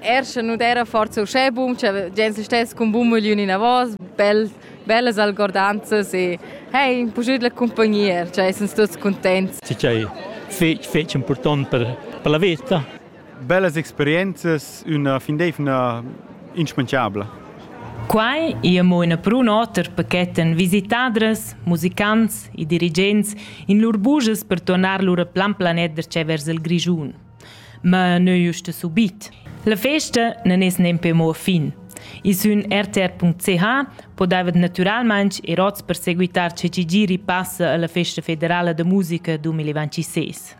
Er sche nu d'eira forsa uschè bun cha gens stess cun bun mögliun inavos, bel, bellas algordanzas e hey, puschüt la cumpagnia, cha essans tuots cuntents. Tü ch'hai fich, fich important per, per la veta. Bellas experienzas, üna findevna inschmanchabla. Quai ia mo ina prun oter paquetan visitadras, musicants e dirigents in lur bujas per tornar lura plan planet da vers il Grischun. Ma neu usta subit. La festa non es nempe mo fin. I sün rtr.ch podavat natüralmaing ir ots per seguitar che chi giri passa alla Festa federala da musica 2026.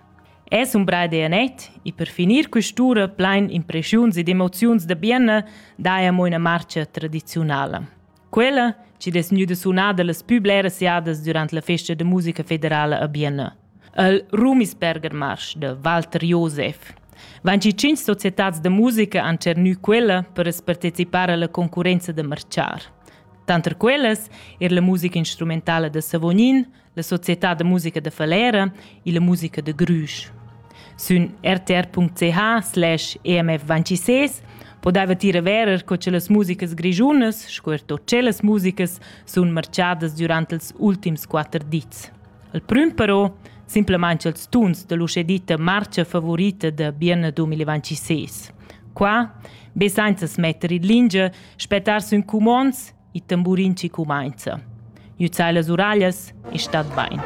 Es un bra idea net e per finir quest'ura plein impressiuns ed emoziuns da bienna daia mo una marcia tradizionala. Quella, chi'd es gnüda sunada las pü bleras jadas durant la festa da musica federala a Bienna, il Ruhmisberger Marsch da Walter Josef. Vainchi tschinch societats da musica han tschernü quella per as partecipar alla concurrenza da marchar. Tanter quellas er la musica instrumentala da Savognin, la società da musica da Falera e la musica de Grüsch. Sün rtr.ch slash emf26 podeva tira verer co che las musicas grigiunas, sco er tot las musicas, sun marchadas durant els ultims quatter dits. Il prüm però, simplament els tuns dell'uscedita marcia favorita de Bienne 2026. Qua, be sainza smetter in lingia, spettar sün cumons Il tamburin chi cumainza. Nüzzair las uraglias e stat bain.